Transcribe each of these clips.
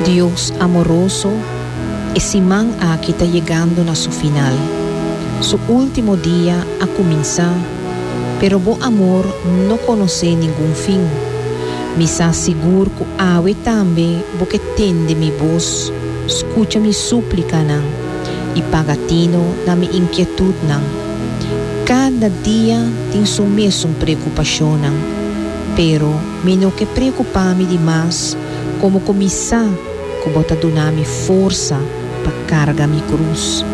Dios amoroso, e siman aki ta yegando na su final. Su ultimo dia a cuminsa, pero bo amor no conoce ningun fin. Mi sa sigur cu awe tambe bo ke tende mi voz, scucha mi suplicanan y paga tino na mi inquietudnan. Cada dia tin su mesun preocupacionnan. Pero mi no ke preokupá mi di mas komo ku mi sa ku Bo ta duna mi forsa pa karga mi krus.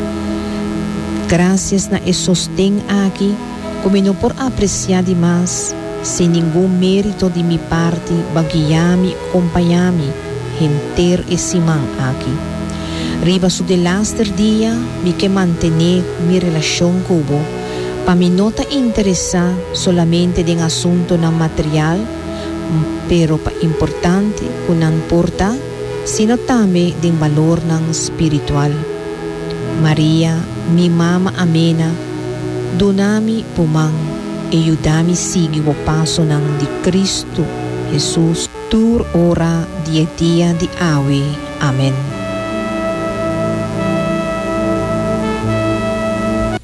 Grasias na e sosten aki ku mi no por apresiá di mas, sin ningun mérito di mi parti Bo guiá mi i kompañá mi henter e siman aki. Riba su delaster dia mi ke mantené mi relashon ku Bo, Pa mi no ta interesá solamente den asuntunan material, m pero pa importante ku nan por ta, sino tambe den balornan spiritual. Maria, mi mama amena, duna mi bo man e yuda mi sigui bo pasonan di Kristu Hesus tur ora di e dia di awe. Amen.